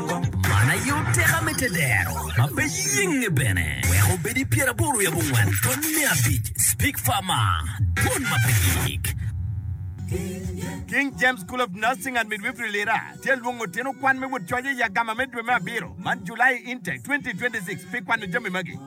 Man aye oteka me te dero, ma pe yenge bene, wek obed i pyeraboro wiye abongwen kony me abic, Speke Farmer, dwon ma pe gik. King James School of Nursing and Midwifery Lira tye lwongo tyen okwan me wot coc i Yagama me dwe me abiro man, July Intake 2026, pi kwano jami magi.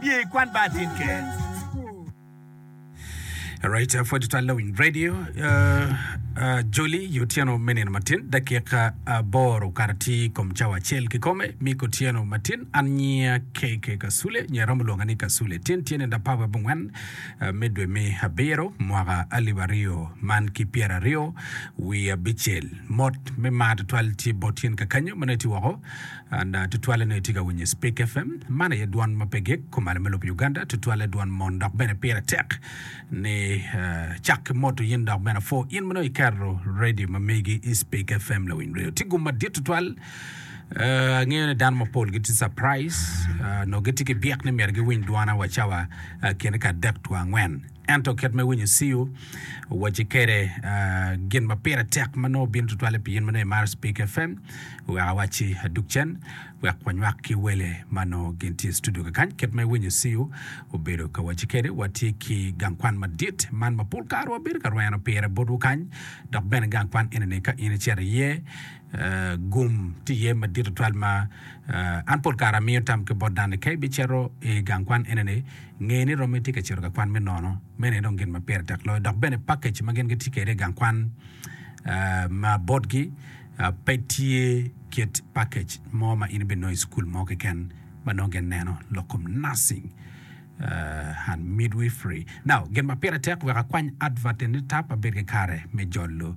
Biye i kwan bar tin ke. Alright, uh, pwod twal lawing radio uh, uh, Joli yo otyeno me nino matin dakika aboro kara ti kom cawa acel kikome miko otyeno matin an nyia KK Kasule nyia romo lwonga ni Kasule tin tyene da pawe bungwen uh, me dwe me abiro mwaka alip aryo man ki pyera aryo wi abicel mot me mar twal tye bot yen kakanyo maneti woko An tutwalle nongo itye ka winyo i Spik FM. Man aye dwan ma pe gik, kumalo me lobo Uganda. Tutwalle dwan mon dok bene pire tek ni cak ki moto yin dok bene apwo in ma nongo iketo redio ma megi i Spik FM lawiny redio. Tye gum madit tutwal. Eh, angeyo ni dano mapol gitye surprise, eh, nongo gitye ki byek ni myero giwiny dwana wa cawa eh, kene ka adek two angwen. Ento kit ma iwinyo ciu, wacci kwede gin ma pire tek ma nongo bino tutwalle pi in ma nongo imaro Speak FM. Wek awacci adug cen wek wanywak ki wele ma nongo gin tye i studio kakany. Kit ma iwinyo ciu obedo ka wacci kwede, watye ki gang kwan madit man ma pol kare wabedo ka rweno pire botwu kany, dok bene gang kwan eni-ni ka in icito iye, Gum tye iye madit tutwal ma an pol kare amiyo tam ki bot dano-ni. Ka ibicito i gang kwan enini, nge ni romi tye ka cito ka kwan me nono. Meno aye dong gin ma pire tek loyo. Dok bene pakej ma gin gitye kwede i gang kwan ma botgi pe tye kit pakej mo ma in ibinongo i cukul mo keken ma nongo gin neno lok kom nursing and midwifery. Now, gin ma pire tek wek akwany advert eni tap abed ki kare me jolo.